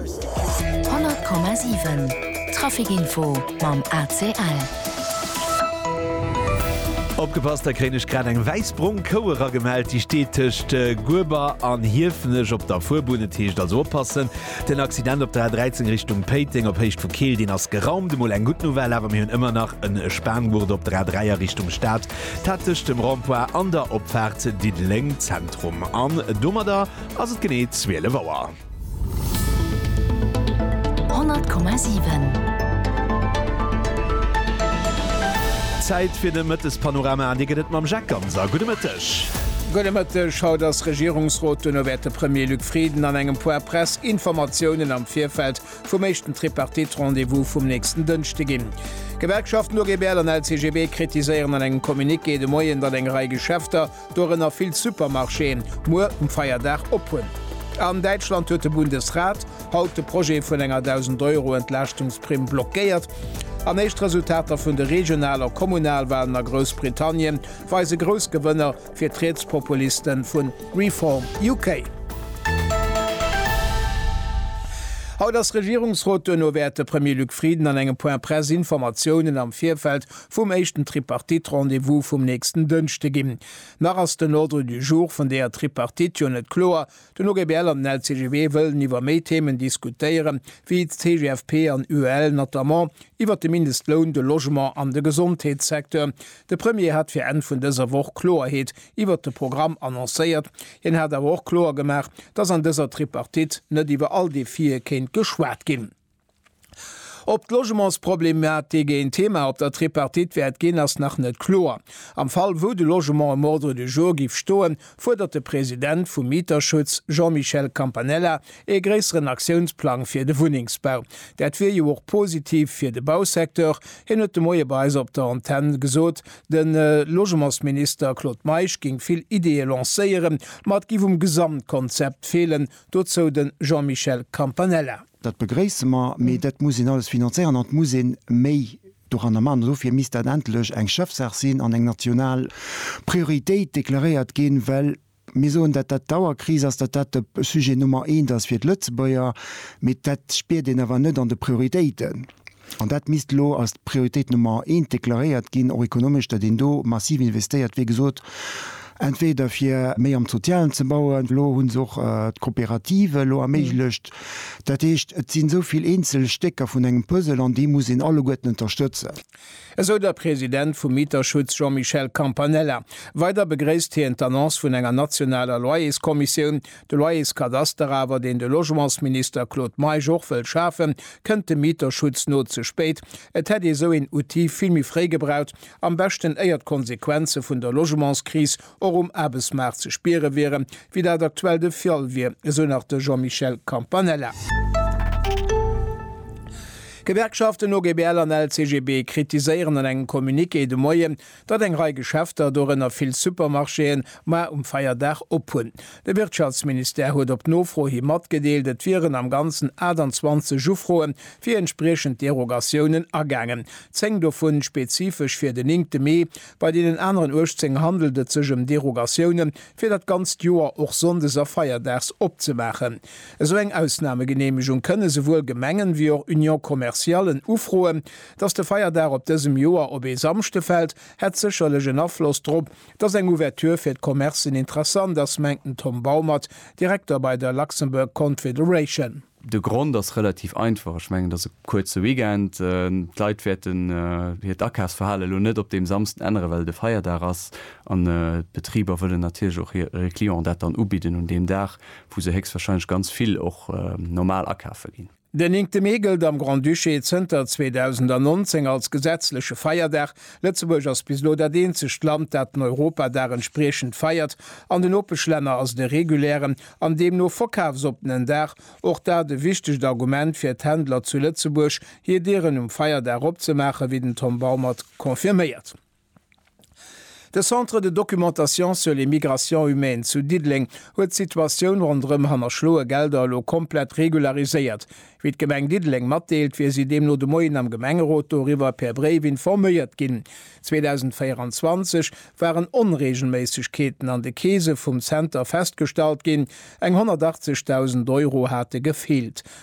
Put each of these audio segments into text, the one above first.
100,7 Trafic Info mam ACL. Opgepasst, da kréien ech grad eng wäiss-brong Kou eragemellt. Déi steet tëscht Gueber an Hiefenech op der Fuerbunn. Et heescht also oppassen. Den Accident op der A13 Richtung Péiteng op Héicht vu Keel, deen ass geraumt. Emol eng gutt Nouvelle awer, mir hunn ëmmer nach e Spanngurt op der A3 a Richtung Stad, dat tëscht dem Rond-point an der Opfaart Diddeleng Zentrum. An domadder ass et genee 12 Auer. Zäit fir de Mëttespanorama an dee gëtt et mam Jacques Ganser. Gudde Mëtteg. Gudde Mëtteg. Haut ass Regierungsrot, duerno wäert de Premier Luc Frieden an engem puer Pressinformatiounen am Virfeld vum éischten Tripartite-Rendez-vous vum nächsten Dënschde ginn. D'Gewerkschaften OGBL an LCGB kritiséieren an engem Communiqué de Moien, datt eng Rei Geschäfter dorënner vill Supermarchéen, muer um Feierdag op hunn. An Däitschland huet de Bundesrat haut de Projet vun enger 1.000 Euro Entlaaschtungsprimm blockéiert. An éischt Resultater vun de Regional a Kommunalwalen a Groussbritannien weise grouss Gewënner fir d'Rietspopuliste vu Reform UK. Haut ass Regierungsrot, duerno wäert de Premier Luc Frieden an engem Point-presse Informatiounen am Virfeld vum éischten Tripartite-Rendez-vous vum nächsten Dënschde ginn. Nach ass den Ordre du jour vun deeër Tripartite jo net kloer. Den OGBL an den LCGB wëllen iwwer méi Themen diskutéiere wéi d'CGFP an UEL, notamment iwwer de Mindestloun, de Logement an de Gesondheetssecteur. De Premier hat fir Enn vun dëser Woch Kloerheet iwwer de Programm annoncéiert. Hien hat awer och kloer gemaach, datt an dëser Tripartite net iwwer all Defië kéint geschwat ginn. Ob d'Logementsproblematik een Thema op der Tripartite wäert ginn, ass nach net kloer. Am Fall wou de Logement um Ordre du jour giff stoen, fuerdert de President vum Mieterschutz Jean-Michel Campanella ee gréisseren Aktiounsplang fir de Wunnengsbau. Dat wier jo och positiv fir de Bausecteur, hien huet de Moie bei eis op der Antenn gesot, de Logementsminister Claude Meisch géing vill Ideeë lancéieren, ma et giff um Gesamtkonzept feelen. Dozou de Jean-Michel Campanella. Dat begréisse mer, mee dat muss een alles finanzéieren an et muss ee méi doranner maachen. An dofir misst dat endlech eng Chefsaach sinn an eng national Prioritéit deklaréiert ginn, well mir soen, datt dat d'Auerkris ass, datt dat de Sujet Nummer eent ass fir d'Lëtzebuerger, mee dat spiert een awer net an de Prioritéiten. An dat misst elo als d'Prioritéit Nummer eent deklaréiert ginn, och ekonomesch, datt een do massiv investéiert, wéi gesot, entweder fir méi am Sozialen ze bauen, elo hu se och d'Coopérative elo erméiglecht, dat heescht, et sinn esou vill eenzel Stécker vun engem Puzzle an déi muss een alleguerten ënterstëtzen. Esou der President vum Mieterschutz Jean-Michel Campanella. Weider begréisst hien d'Annonce vun enger nationaler Loyerskommissioun. De Loyerskadaster awer, deen de Logementsminister Claude Meisch och wëll schafen, kënnt dem Mieterschutz no ze spéit. Et hätt ee sou een Outil vill méi fréi gebraucht, am beschten éier d'Konsequenze vun der Logementskris och um Aarbechtsmaart ze spiere wieren, wéi dat aktuell de Fall wier, esou nach de Jean-Michel Campanella. D'Gewerkschaften OGBL an LCGB kritiséieren an engem Communiqué de Moien, datt eng Rei Geschäfter, dorënner vill Supermarchéen, mar um Feierdag op hunn. De Wirtschaftsministère huet op Nofro hi matgedeelt, et wieren am Ganzen 28 Ufroe fir entspriechend Derogatiounen agaangen, 10 dovu spezifesch fir den néngte Mee. Bei deenen aneren 18 handelt et sech ëm Derogatioune fir dat ganzt Joer, och sonndes a feierdags opzemaachen. Esou eng Ausnamegeneemegung kënne souwuel Gemengen, wéi och Union-commerciallen ufroen. Dass de Feierdag op dësem Joer op ee Samschde fält, hätt sécherlech en Afloss drop, dass eng Ouverture fir d'Commercen interessant ass, mengt den Tom Baumert, Direkter bei der Luxembourg Confederation. De Grond ass relativ einfach, ech mengen et ass e kuerze Weekend, d'Leit wäerten hiert Akafsverhale elo net op deem Samsden änneren, well et e Feierdag ass an d'Betriber wëllen natierlech och hire Clienten dat dann ubidden un deem Dag, wou se héchstwahrscheinlech ganz vill och normal akafe ginn. Den néngte Mee gëllt am Grand-Duché zënter 2019 als gesetzleche Feierdag. Lëtzebuerg ass bis elo dat eenzegt Land, dat den Europadag entspriechend feiert. An de Nopeschlänner ass et e regulären an deemno verkafsoppenen Dag. Och dat e wichtegt Argument fir d'Händler zu Lëtzebuerg, hir Dieren um Feierdag opzemaachen, wéi den Tom Baumert confirméiert. De Centre de documentation sur les migrations humaines zu Diddeleng huet d'Situatioun ronderëm hannerschloe Gelder elo komplett regulariséiert. Wéi d'Gemeng Diddeleng matdeelt, wier si deemno de Moien am Gemengerot doriwwer per Bréif informéiert ginn. 2024 waren Onreegelméissegkeeten an de Keese vum Zenter festgestallt ginn, eng 180.000 Euro hate gefeelt.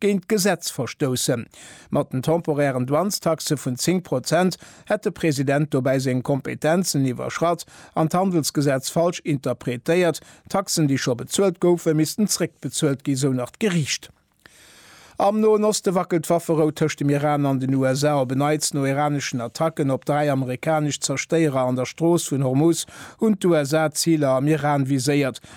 géint d'Gesetz verstoussen. Mat den temporären Douanestaxe vun 10 Prozent hätt de President dobäi seng Kompetenzen iwwerschratt an d'Handelsgesetz falsch interpretéiert. Taxen, déi scho bezuelt goufen, missten zréckbezuelt ginn, sou nach d'Geriicht. Am Noen Oste wackelt d'Wafferou tëscht dem Iran an den USA. Op en Neits, no iraneschen Attacken op dräi amerikanesch Zerstéierer an der Strooss vun Hormuz, hunn d'USA Ziler am Iran viséiert.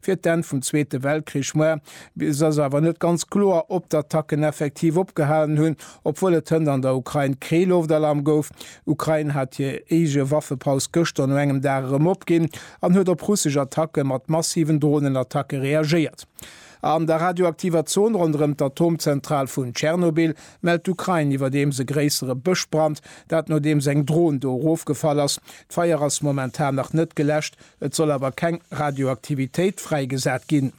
fir d'Enn vum Zweete Weltkrich war. Bis ass awer net ganz kloer, ob d'Attacken effektiv opgehalen hunn, obwuel et hënt an der Ukrain kee Loftalarm gouf. Ukrain hat hir eege Waffepaus gëschter no engem Dag erëm opginn an huet op russesch Attacke mat massiven Dronenattacke reagéiert. An der radioaktiver Zon ronderëm d'Atomzentral vun Tschernobyl mellt d'Ukrain iwwerdeems e gréissere Bëschbrand, dat nodeems eng Dron do erofgefall ass. D'Feier ass momentan nach net geläscht. Et soll awer keng Radioaktivitéit fräigesat ginn.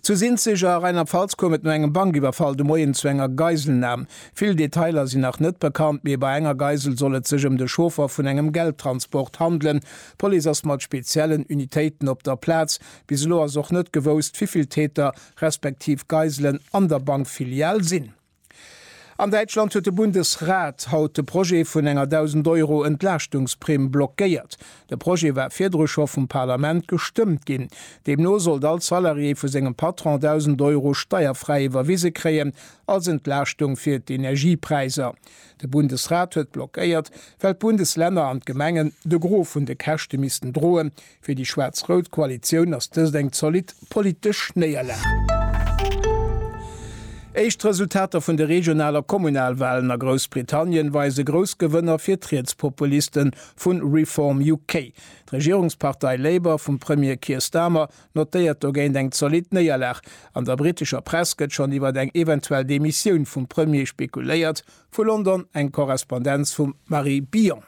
Zu Sinzig a Rheinland-Pfalz koum et no engem Bankiwwerfall de Moien zu enger Geiselnam. Vill Detailer sinn nach net bekannt, mee bei enger Geisel soll et sech ëm de Chauffer vun engem Geldtransport handelen. D'Police ass mat speziellen Unitéiten op der Plaz. Bis elo ass och net gewousst, wivill Täter respektiv Geiselen an der Bankfilial sinn. An Däitschland huet de Bundesrat haut de Projet vun enger 1.000 Euro Entlaaschtungsprimm blockéiert. De Projet war virdru scho vum Parlament gestëmmt ginn. Deemno sollt all Salarié vu sengem Patron 1.000 Euro steierfräi iwwerwise kréien, als Entlaaschtung fir d'Energiepräiser. De Bundesrat huet blockéiert, well d'Bundeslänner an d'Gemengen de Gros vun de Käschte missten droen, Fir déi schwaarz-rout Koalitioun ass dëst eng zolidd politesch Néierlag. Éischt Resultater vun de Regional a Kommunalwalen a Groussbritannien weise grouss Gewënner fir d'Rietspopuliste vu Reform UK. D'Regierungspartei Labour vum Premier Keir Starmer notéiert dogéint eng zolidd Néierlag. An der britescher Press gëtt schonn iwwer eng eventuell Demissioun vum Premier spekuléiert, vu London eng Korrespondenz vum Marie Billon.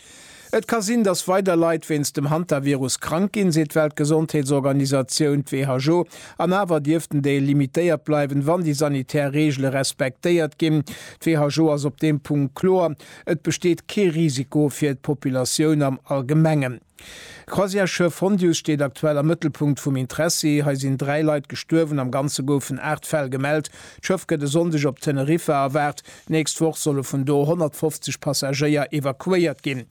Et ka sinn, datt weider Leit wéinst dem Hantavirus krank ginn, seet d'Weltgesondheetsorganisatioun, d'WHO, an awer dierft den Dél limitéiert bleiwen, wann déi sanitär Reegele respektéiert ginn. D'WHO ass op deem Punkt kloer, Et besteet kee Risiko fir d'Populatioun am Allgemengen. D'Croisièresschëff Hondius steet aktuell am Mëttelpunkt vum Interessi. Hei sinn dräi Leit gestuerwen, am Ganze goufen aacht Fäll gemellt. D'Schëff gëtt e Sonndeg op Teneriffa erwaart. D'nächst Woch solle vun do 150 Passagéier evakuéiert ginn.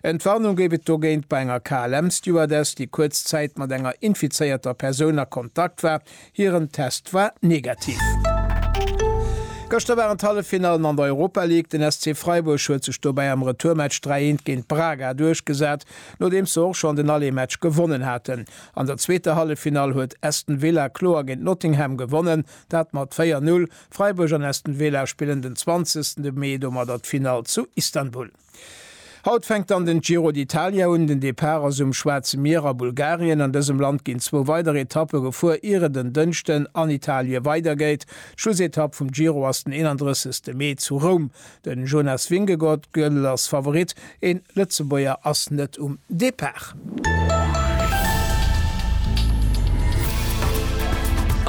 Entwarnung géif et dogéint bei enger KLM-Stewardess, déi kuerz Zäit mat enger infizéierter Persoun a Kontakt war. Hiren Test war negativ. Gëschter waren d'Halleffinallen an der Europa League. Den SC Freiburg huet sech dobäi am Retourmatch 3, 1 géint Braga duerchgesat, nodeems se och schonn den Allé-Match gewonnen haten. An der zweeter Halleffinall huet Aston Villa kloer géint Nottingham gewonnen, dat mat 4, 0. Freiburg an Aston Villa spillen den 20 de Mee domadder d'Finall zu Istanbul. Haut fänkt dann den Giro d'Italia un. Den Depart ass um Schwaarze Mier a Bulgarien. An dësem Land ginn zwou weider Etappe gefuer, ier et en Dënschden an Italie weidergeet. D'Schlussetapp vum Giro ass den 31 Mee zu Roum. Den Jonas Vingegaard, Gödel, ass Favorit, een Lëtzebuerger ass net um Depart.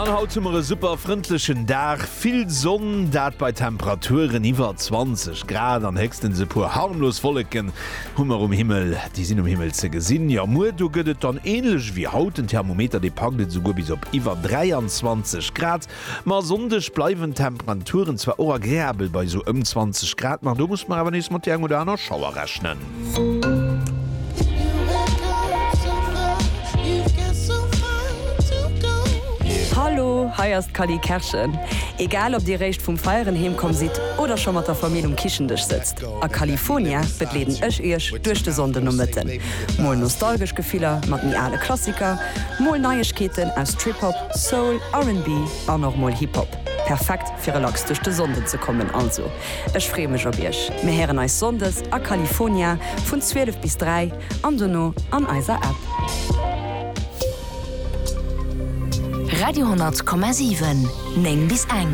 An haut hu mer e super frëndlechen Dag, vill Sonn, dat bei Temperaturen iwwer 20 Grad an héchstens e puer harmlos Wolleken hu mer um Himmel, déi sinn um Himmel ze gesinn. Jo, muer do gëtt et dann änlech ewéi haut, den Thermometer dee packt et esouguer bis op iwwer 23 Grad. Ma e Sonndeg bleiwen d'Temperaturen zwar och agreabel bei esou ëm 20 Grad, ma do muss mer awer nees mat der eng oder aner Schauer rechnen. Hallo, hei ass d'Cally Kerschen. Egal ob dir réischt vum Feieren heemkomm sidd oder scho mat der Famill um Kichen-Dësch sëtzt, A California begleeden ech iech duerch de Sonndenomëtten. Mol nostalgesch Gefiller mat méi ale Klassiker, mol Neiegkeeten aus Trip-Hop, Soul, RnB an och mol Hip-Hop. Perfekt fir relax duerch de Sonnden ze kommen. Also ech freeë mech op iech. Mir héieren eis Sonndes a California vun 12 bis 3. an dono an eiser App. Radio 10,7, 9 bis eng.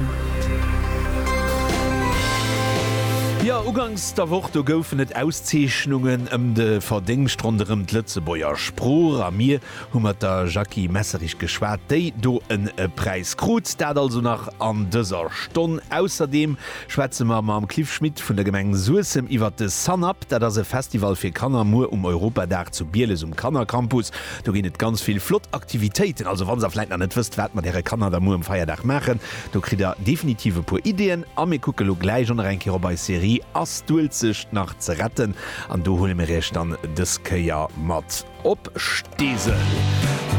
Jo, ugangs der Woch, do goufen et Auszeechnungen ëm de Verdéngscht ronderëm d'Lëtzebuerger Sprooch a mir hu mat der Jacky Messerich geschwat, déi do en Präis krut. Dat also nach an dëser Stonn. Ausserdeem Schwätze mer mam Cliff Schmit vun der Gemeng Suessem iwwert de Sun Up. Dat ass e Festival fir Kanner muer um Europadag zu Bieles um Kannercampus. Do ginn et ganz vill flott Aktivitéiten. Also wann der vläit nach net wësst wat mat äre Kanner da muer um Feierdag maachen, do kritt der definitiv e puer Ideeën. A mir kucke lo gläich och nach eng Kéier op eis Serie Ass d'Uelzecht nach ze retten? An do huele mir iech dann dës Kéier mat. Op Steesel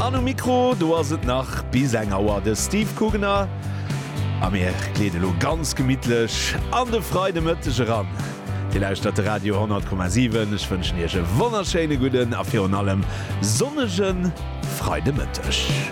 an um Mikro, do ass et nach bis eng Auer de Steve Kugener a mir gleeden elo ganz gemittlech an de Freidemëtteg eran. Dir lauschtert de Radio 10,7. Ech wënschen Iech e wonnerschéine gudden a virun allem sonnege Freidemëtteg.